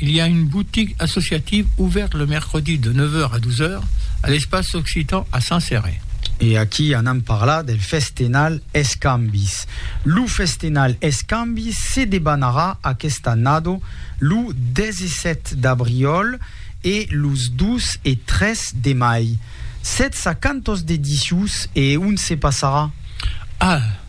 Il y a une boutique associative ouverte le mercredi de 9 heures à 12 heures à l'Espace Occitan à Saint-Céré. E aquí anam parlar del festenal Escambis. Lo festenal Escambis se debanarà aquesta annado lo 17 d'abriòl e los 2 e 3 de mai. Sètz a quantos dedicius e ont se passarà? Ah!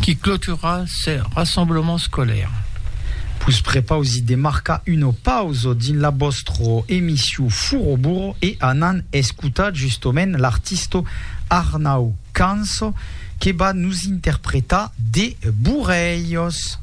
qui clotura ce rassemblement scolaire. Vos prepausi de marcar una pausa dins la vòstra emission Furo Burro e anant escotar justament l'artista Arnau Canço que va nos interpretar De Burrelhos.